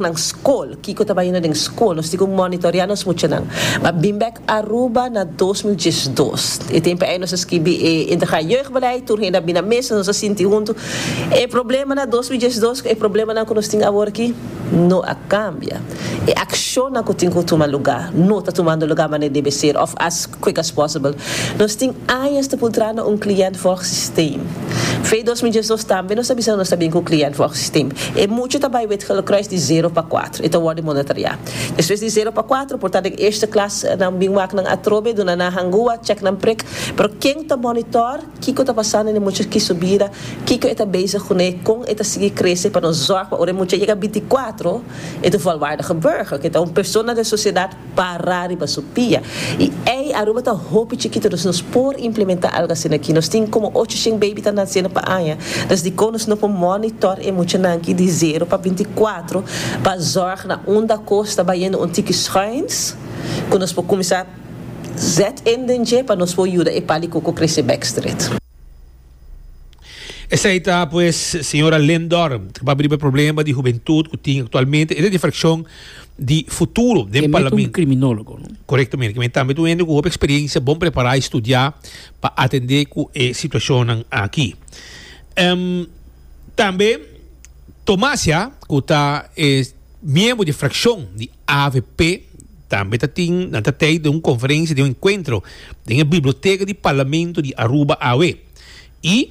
nan skol kiko ta bai yendo den skol nos tin ku monitorea nos muchanan pa bin bek Aruba na dos mil diesh dos e tempu ei nos a skibi e integraal jeugdbeleid tur hende a bin na mesa nos a sinti huntu e problema na dos mil diesh dos ku e problemanan ku nos tin awor aki no a kambia e akshonnan ku tin ku tuma lugá no ta tumando lugá manera debe ser òf as quick as possible nos tin añas ta pul traha na un kliènt vòg sistem. Fe dos mil diesdos Tambe nos ta bisa nos ta bin ku client for ox stim. E mucha ta bai Wit-Gele Kruis di zero pa kuater. E ta worde monitorea. Despues di zero pa kuater por ta den eerste klas nan bin wak nan atrobe, duna nan hangua, check nan prik. Pero ken ta monitor kiko ta pasando ne mucha ki su bida, kiko e ta bezig kune, kon e ta sigui krese pa nos zorg pa ora e mucha yega binti kuatro e ta volwaardige burger, ku e ta un persona den sociedad Para riba su pia. Y ey, Aruba ta hopi chikito, dus nos por implementa algo asina aki. Nos tin como ocho shen baby ta naciendo pa aña. Dus dico nos no por monitor e muchanan aki di zero pa binti cuatro pa zorg na un daco's ta bayendo un tiki schuins cu nos por cuminsa zet in den dje pa nos por yuda e palicoco crece bek stret. Esei ta pues señora Lynn Dorm, ta papia riba e problema di hubentud cu tin actualmente. E ta di fraccion di futuro den Kemey ta un Parlamento. criminologo, no? Correcto, meneer. Kemey tambe ta un hende cu hopi experiencia, bon prepara y studia pa atende cu e situacionnan aki. Em, tambe Tomas, ya, cu ta e miembro di fraccion di AVP, Tambe ta tin, nan ta tei den un conferencia, den un encuentro den e biblioteca di Parlamento di Aruba awe. Y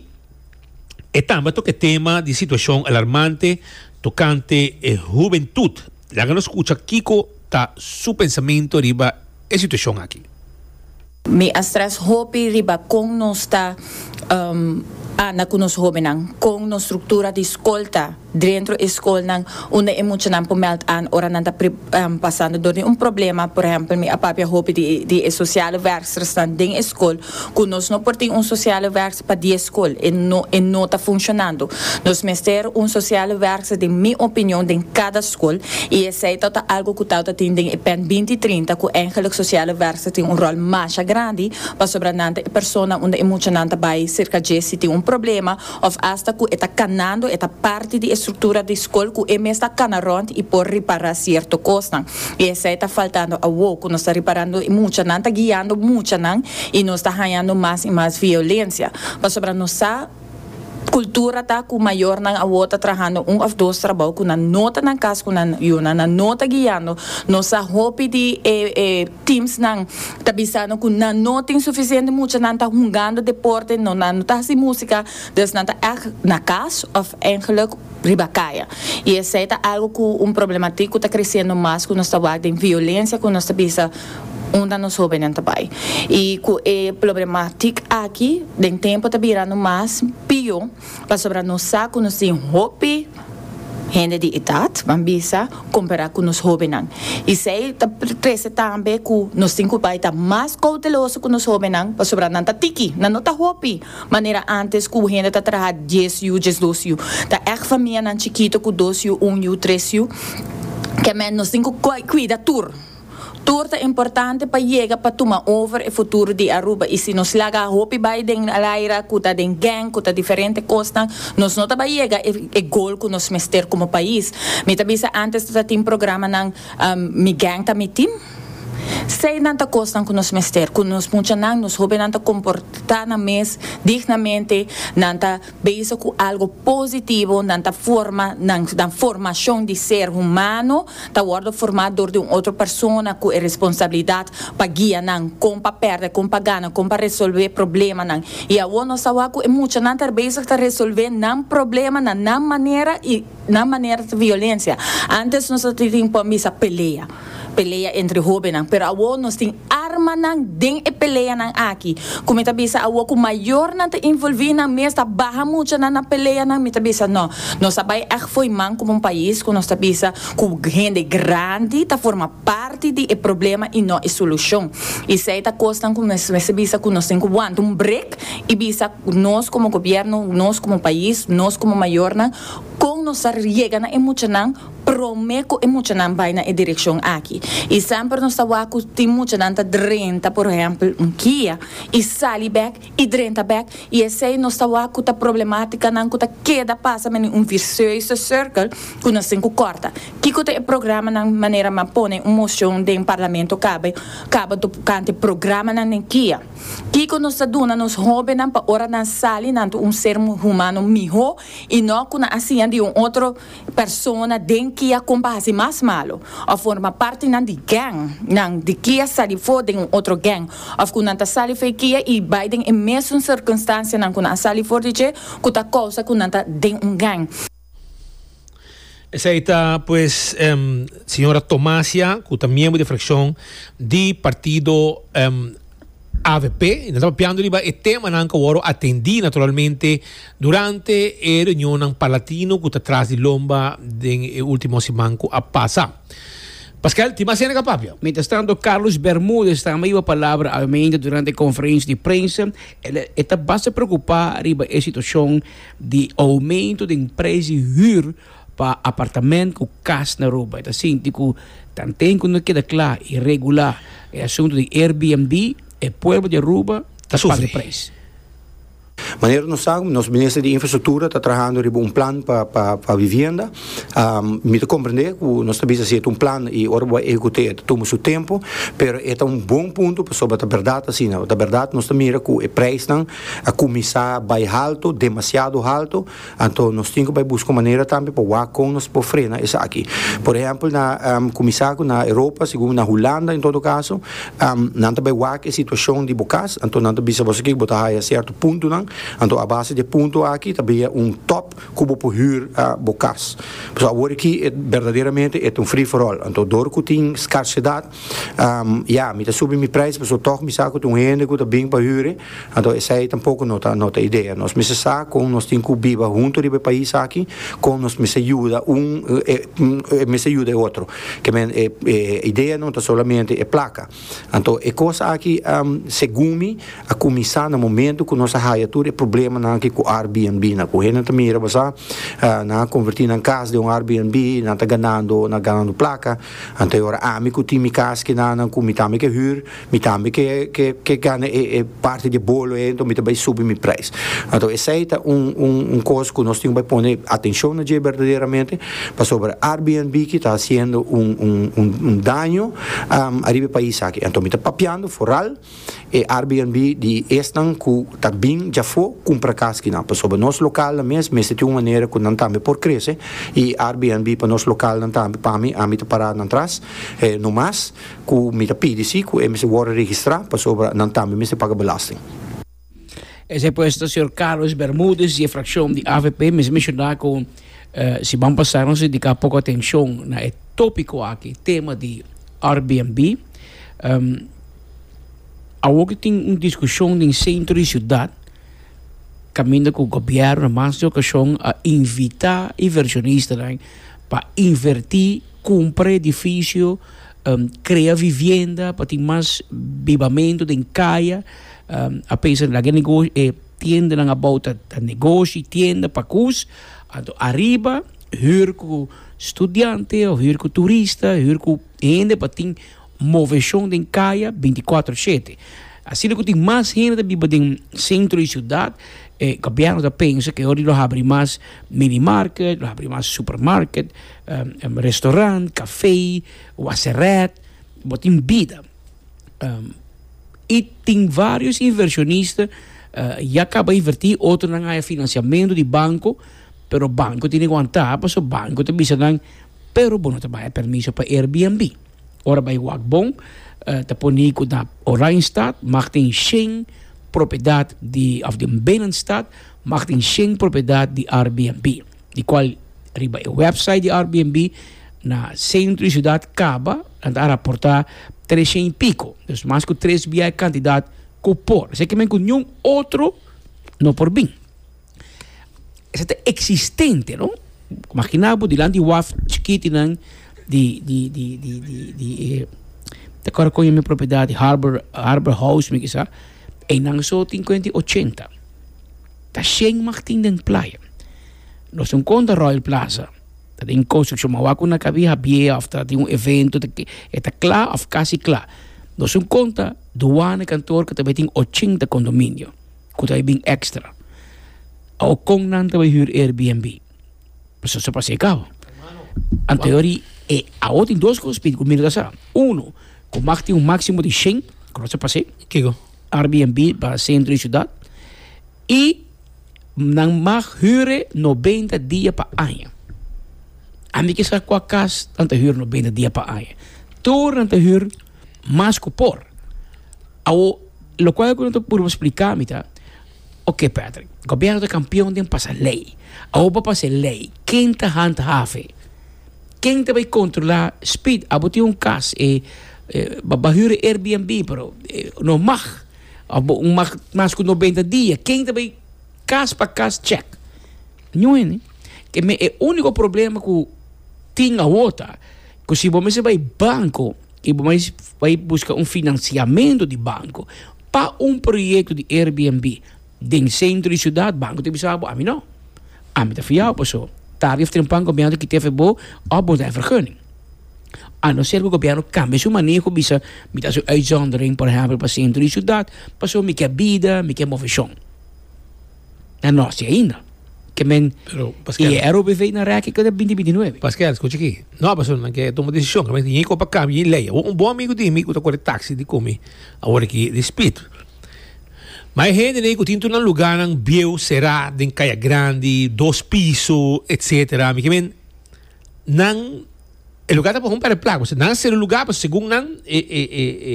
e tambe a toca e tema di situacion alarmante tocante e hubentud. Laga nos scucha kico ta su pensamento riba. e situacion aki. Mi a stres hopi riba con nos ta anda cu nos hobennan, con nos structura di scol ta drentro e scolnan unda e muchanan por meld aan ora nan ta pasando door di un problema, por ehempel mi a papia hopi di e sociale werkstersnan den e scol Cu nos no por tin un sociale werkster pa die school, e no e no ta funcion-ando. Nos mester un sociale werkster den mi opinion den cada school y esey ta ta algo cu tauta tin den e pen binti trinta cu eingelijk sociale werkster tin un rol masha grandi pasobra nan ta e persona unda e muchanan ta bay cerca dje si tin un problema òf asta ku e ta kanando e ta parti di e struktura di skol ku e mes ta kana rònt i por ripará sierto kosnan. I esei ta faltando awó ku nos ta riparando i mucha nan ta guiando mucha nan i nos ta hañando mas i mas violensia pasobra nos sa kultura ta ku mayornan awó ta trahando un òf dos trabou ku nan no ta nan kas ku nan yunan nan no ta guiando nos sa hopi di e Teamsnan ta bisano cu nan no tin suficiente mucha, nan ta hungando deporte, no nan no ta haci musica, dus nan ta echt na cas of eigenlijk riba caya. Y esey ta algo cu un problematic cu ta creciendo mas cu nos ta wak den violencia cu nos ta bisa unda nos hobenen ta bay. Y cu e plobrematic aki den tempo ta birando mas pio. Pasobra nos sa ku nos tin hopi hende di edat, ban bisa, kompará ku nos hóbennan. I esei ta trese tambe ku nos tin ku bai ta mas kouteloso ku nos hóbennan, pasobra nan ta tiki, nan no ta hopi manera ántes ku hende ta traha dies yu, diesdos yu. Ta èg famianan chikitu ku dos yu, un yu, tres yu. Kèmen nos tin ku kuida tur. Tur ta importante pa yega pa tuma over e futuro di Aruba y si nos laga hopi bay den laira cu ta den gang cu ta diferente cosnan nos no ta bay yega e goal cu nos mester como pais. Mi ta bisa antes no ta tin programanan Mi Gang Ta Mi Team. Sey nan ta cosnan cu nos mester cu nos muchanan nos hopinan ta comporta nan mes dignamente nan ta Bezig ku algu positivo, nan ta forma, nan nan formashon di ser humano ta wòrdu formá dor di un otro persona ku e responsabilidat pa guia nan kon pa pèrdè, kon pa gana, kon pa resolvè problemanan. I awor nos ta wak ku e muchanan ta bezig ta resolvè nan problema na nan manera i. nan manera ta violencia antes nos a tin por misa pelea pelea entre hobennan pero awor nos tin armanan den e peleanan aki cu mi ta bisa awor cu mayornan ta involvi nan mes ta baha mucha nan na peleanan mi ta bisa no nos a bay ech fo'i man como un pais cu nos ta bisa cu hende grandi ta forma parti di e problema y no e solucion esey ta cosnan cu nos mester bisa cu nos tin cu wanta un break y bisa nos como gobierno nos como pais nos como mayornan Kon nos ta riega na e muchanan promé ku e muchanan bai na e direkshon aki? I semper nos ta wak ku tin muchanan ta drenta por ehèmpel un kia i sali bèk i drenta bèk i esei nos ta wak ku ta problemátikanan ku ta keda pasa mende un visieuze sirkel ku nos tin ku kòrta. Kiko ta e programanan manera m'a pone un moshon den parlamento kaba kaba tokante programanan den kia? Kiko nos ta duna nos hóbennan pa ora nan sali nan ta un ser humano mihó i no ku nan a siña di un otro persona den kia kon pa hasi mas malu, òf forma partinan di gèng nan di kia sa di for den un otro gèng, òf ku nan ta sali fei kia i bai den e mesun sirkunstansianan ku nan a sali for di dje ku ta kousa ku nan ta den un gèng. Esei ta pues señora Tomasia cu ta miembro di e fraccion di partido avp. Y nan ta papiando riba e temanan cu a wor atendi naturalmente durante e reunionnan palatino cu ta tras di lomba den e ultimo siman cu a pasa. Pascual, tin mas hende cu a papia? Mientras tanto Carlos Bermudez ta amiba palabra al medio durante e conferenci di prensa. E ta basta preocupa riba e situacion di oumento den preis di hür pa apartament ku kas na Aruba. E ta sinti ku tanten ku no keda kla i regulá e asuntu di Airbnb, e pueblo di Aruba ta pasa e preis. Manera nos sa, nos Minister di Infrastruktura ta trahando riba un plan pa vivienda. Mi ta komprendé ku nos ta bisa si e ta un plan i ora bo a ehekut'é e ta tuma su tempu, pero e ta un bon puntu pasobra ta bèrdat asina. Ta bèrdat nos ta mira ku e preisnan a kuminsá bai haltu, demasiado haltu, anto nos tin ku bai buska un manera tambe pa wak kon nos por frena esaki. Por ehèmpel na kuminsá ku na Europa, segun na Hulanda en todo kaso, nan ta bai wak e situashon di bo kas, anto nan ta bisa boso ke ku bo ta haya sierto puntonan, anto a base di e punto aki ta bia un top ku bo por hür bo kas. Pasobra awor aki et berdaderamente et un free for all, anto dor ku tin skarsedat Ya, mi ta subi mi prijs pasobra tog mi sa cu ta un hende cu ta bin pa hure, anto esai tampoco no ta no ta idea. Nos mester sa con nos tin cu biba hunto riba e pais aki, con nos mester yuda un e mester yuda e otro. Ke men e e idea no ta solamente e placa. Anto e cos aki segun mi a cuminsa na momento cu nos a haya tur e problemanan aki cu Airbnb nan. Cu hende ta mira basa nan a converti nan cas den un Airbnb, nan ta ganando, nan ganando placa. Anto ora ami ku tin mi kas kenanan ku mi tambe ke hür, mi tambe ke ke ke gana e e parti di e bolo ei anto mi ta bai subi mi prijs. Anto esei ta un un un kos ku nos tin ku bai pone atenshon na dje berdaderamente pasobra Airbnb ki ta hasiendo un un un daño ariba e pais aki. Anto mi ta papiando foral. E Airbnb di esnan ku ta bin dja afó kumpra kas kinan, pasobra nos lokalnan mes mester tin un manera ku nan tambe por krese i Airbnb pa nos lokalnan tambe pa mi ami ta para nan tras no mas ku mi ta pidi si ku e mester wòrdu registrá pasobra nan tambe mester paga belasting. Esei pues ta señor Carlos Bermudez di e fraccion di avp. Mester menciona cu si ban pasa nos a dedica poco atencion na e topico aki, tema di Airbnb. Awor cu tin un discusion den centro di ciudad caminda cu gobierno na mas di un ocasion a invita inversionista pa inverti, cumpra e edificio. Krea vivienda pa tin mas bibamentu den kaya, a pensa lag'e negoshi e tiendanan abou ta negoshi tienda pa koes, anto ariba hür ku studiante òf hür ku turista, hür ku hende pa tin moveshon den kaya bintikwatro shete. Asina ku tin mas hende ta biba den sentro di siudat e gobièrnu ta pensa ke oria lo habri mas minimarket, lo habri mas supermarket. Restaurant, café, waseret, bo tin bida. Y tin varios inversionista ya caba inverti, otronan haya financiamento di banco, pero banco tin di wanta, pasobra banco ta bisa nan, pero bo no ta bay permiso pa Airbnb. Ora bay wak bon, ta poni cu na Oranjestad mag tin shen propiedad di, of den Binnenstad mag tin shen propiedad di Airbnb. di cual riba e website di Airbnb na centro di ciudad caba nan ta a raporta treshen y pico, dus mas cu tres bia e cantidad cu por. Esey ke men cu niun otro no por bin. Esey ta existente, no? Imagina bo dilanti di waf chikitinan di ta acorda con e propiedad di Harbor House, mi kisa, eynan so tin cuenta ochenta. Ta shen Martin den playa. Nos un konta Royal Plaza ta den konstruksyon, ma wak ku na kabi habié òf ta den un evento, e ta kla òf kasi kla. Nos un konta duane kantoor ku ta bai tin ochenta kondominio ku ta bai bin èkstra. Awor kon nan ta bai hür Airbnb? Pasobra so pas'é kaba. Anterior di e awor tin dos kos, Pidi, ku mira ta sa. Uno, ku Martin un máksimo di shen, ku lo ta pas'é. Kiko? Airbnb pa sentro di ciudad y nan mag hure noventa dia pa aña. Ami ke sa cua cas nan ta hure noventa dia pa aña. Tur nan ta hure mas cu por. Awo, locual cu nan ta purba splica mi ta, ok Patrick, gobierno ta campeon den pasa ley. Awo bo pasa e ley, ken ta handhaven? Ken ta bay controla speed abo tin un cas e ba hura airbnb pero no mag abo no mag mas cu noventa dia ken ta bay cas pa cas check no hende ke me e unico problema cu tin awor ta cu si bo mester bay banco y bo mes bay busca un financiamento di banco pa un proyecto di airbnb Den sentro di siudat banco ta bisa bo ami no, ami ta fiao paso tardi of trempan gobierno ta kita efe bo of bo ta den vergunning. A no ser cu gobierno cambia su maneho bisa mi ta haci un uitzondering por ehempel pa centro di ciudad paso mi ke bida mi ke movecion. Na nos tin ainda ke men y e ROBV na reki keda binti binti nuebe. Pasquel scuchi aki, no paso nan ke tuma decision ke men tin hiko pa cambia e ley. Un bon amigo di mi cu ta kore taxi di cu mi awor aki di speed. Ma e hende nei ku tin tur nan lugánan bieu será den kaya grandi, dos piso, etc. Mi ke men nan e lugá ta por homp'é plak pasobra nan a sedu lugá pasobra segun nan e e e e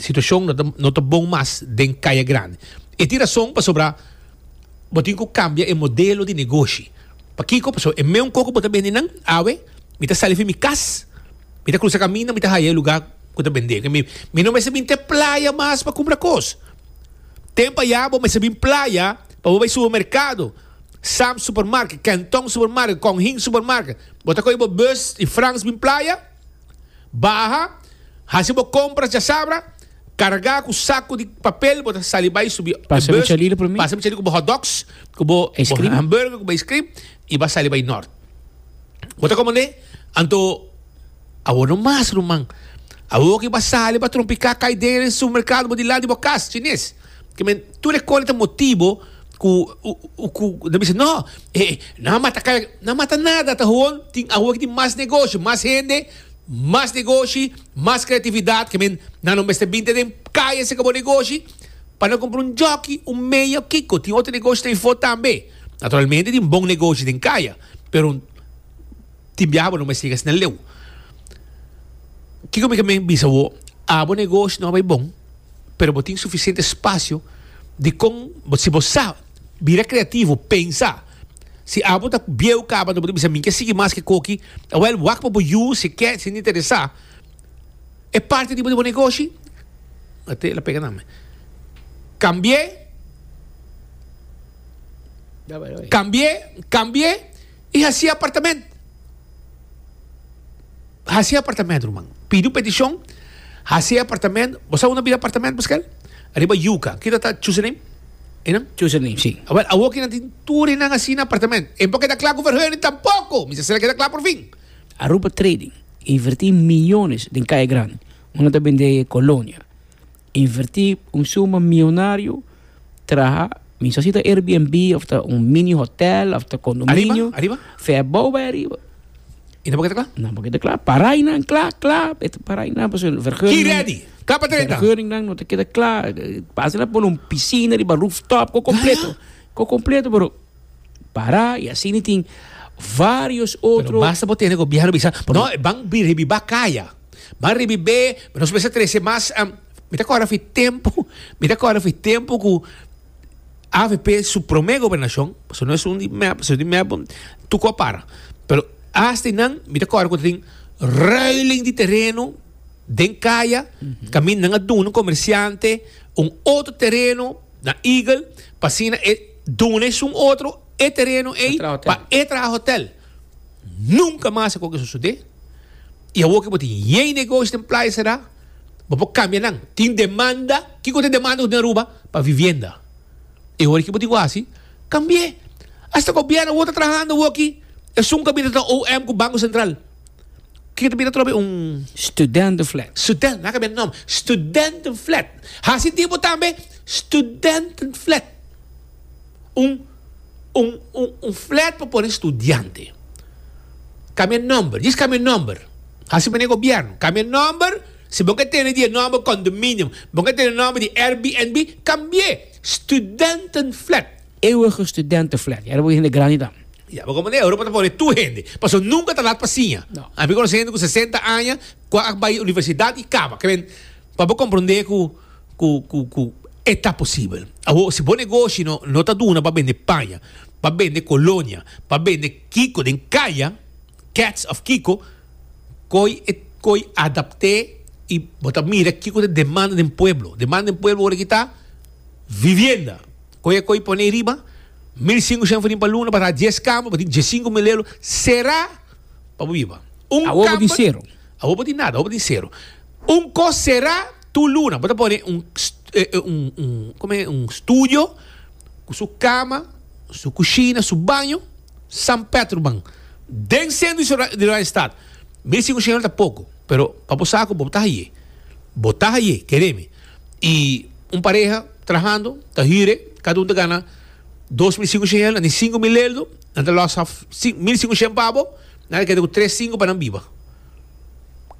situashon no ta no ta bon mas den kaya grandi. E tin rason pasobra bo tin ku kambia e modelo di negoshi. Pakiko? Pasobra e meun kos ku bo ta bendi nan awe mi ta sali fin mi kas. Mi ta crusa camino, mi ta haya e lugar cu ta bende. Mi, mi no mester bin te playa mas pa cumpra cos. Tempo aya bo mester bin playa pa bo bay supermercado. Sam's Supermarket, Kenton Supermarket, Kong Hing Supermarket. Bo ta coge bo bus di Frans bin playa, baha, haci bo compras dja sabra, carga cu saco di papel, bo ta sali bay subi e bus. Pasa mi chalilo pa mi. Pasa mi chalilo cu bo hotdogs, cu bo hamburger, cu bo ice cream. I ba sali bai nort. Bo ta komand'é? Anto awor no mas, ruman. Awor ki bo a sali pa trompiká kai den e supermerkado bo di lado di bo kas, chines. Ke men, tur e kore ta motibo ku ku nan bisa, No, e nan a mata kai. Nan mata nada, ta hon tin awor ki tin mas negoshi, mas hende, mas negoshi, mas kreatividat. Ke men, nan lo mester binte den kai a seka bo negoshi pa nan kumpra un jòki, un meia o kiko. Tin otro negoshi ta info tambe. Naturalmente tin bon negoshi den kaya, pero tin biaha bo no mester yega asina leu. Kiko mi ta men bisa bo? Abo negoshi no a bai bon, pero bo tin sufisiente spasio dikon, si bo sa bira kreativo, pensa, si abo ta bieu kaba, bo ta bisa mi ke sigui mas ke koki, awel wak pa bo yu si e ke, si e interesá. E parti riba di bo negoshi, Mateo la pega nan me, kambi'é. Cambié, cambié y haci apartamento. Haci apartamento, ruman. Pidi un peticion, haci apartamento. Bo sa una bira apartamento pa skel? Riba yuca. Kita ta Chusseneem? Enan? Chusseneem, si. Awel, awo kinan tin tur enan asina apartamento. E por keda kla ku Verheunen tampoco. Mi sa sera keda kla por fin. Aruba Trading inverti millones den Kaya Grandi, unda ta bendé colonia. Invertí un suma mionario traha miso si ta Airbnb of ta un mini hotel of ta condominio. Ariba, ariba. Fe abou bay ariba. Y tampoco está claro. Tampoco está claro. Parai nan cla, cla, eta parai nan paso vergunning. He ready. Cla pa trenta. Vergunning nan no ta keda cla. Pasa na pone un piscina riba rooftop, co completo. Co completo pero. Pará i asina tin vários otro. Pero basta bo tene gobièrnu bisa, no, ban ribibá kaya, ban ribib'é, nos mester trese mas. Mi ta kòrda fi tempu, mi ta kòrda fi tempu ku avp su promé gobernashon, pasobra no es un di mèp, pasobra di mèp tuku a para. Pero asta i nan mi ta kòrda ku ta tin ruiling di tereno den kaya, kaminda nan a duna un komersiante un otro tereno na Eagle pa asina e. Duna esun otro e tereno ey pa e traha hotel. Nunca mas a coge sucede. Y awor que bo tin yey negoshi den Playa Será, bo por cambia nan. Tin demanda, kico ta e demanda cu tin Aruba? Pa vivienda. E ora ki bo tin cu haci, cambie. Hasta gobierno awor ta trahando awor aki. Esun caminda ta OM cu Banco Central. Kiko ta bira trobe un Studentenflat? Student, nan a cambia nom. Studentenflat. Haci tiempo tambe Studentenflat. Un, un, un, un flat pa pone studiante. Cambia nomber. Djis cambia nomber. Haci mene gobierno. Cambia nomber. Si bo ke tene di e nomber condominium, bo ke tene nomber di Airbnb, cambi'e. Studentenflat. Eeuwige Studentenflat. Yara bo hende grandi ta. Ya, bo komo den Europa ta pone tur hende. Paso nunka ta lat pa siña. No. A mi konoce hende cu sesenta aña cu a bay universidad y caba. Keren, pa bo comprende cu, cu, cu, cu e ta posibel. Awor, si bo negoshi no, no ta duna pa bende paña, pa bende colonia, pa bende kico den caya, cats of kico, coy e, coy adapte y bo ta mira kico ta e demanda den pueblo. Demanda den pueblo ora aki ta vivienda. Koe koi pone riba mil sinku shen frin pa luna pa sa dies kambo pa tin dies sinku milelo sera pa bo biba un kambo awo bo tin sero awo bo tin nada awo bo tin sero un kos sera tur luna bo ta pone un kome un studio ku su kama su kushina su baño san petro man den centro di ciudad di rainstat mil sinku shen ta poko pero pa bo sa ku bo ta haye bo ta haye keremi. y un pareha trahando ta hire cada un ta gana dos mil cinco shehen nan tin cinco mil leldo nan ta los af mil cinco shen pa bo nan ta keda cu tres cinco pa nan biba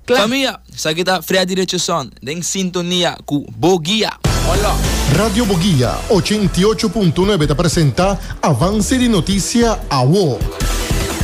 cla. Famia, esaki ta Freddy Richardson den sintonia cu Bo Guia. Hola. Radio Bo Guia ochenta i ocho punto nuebe ta presenta avance di noticia awo.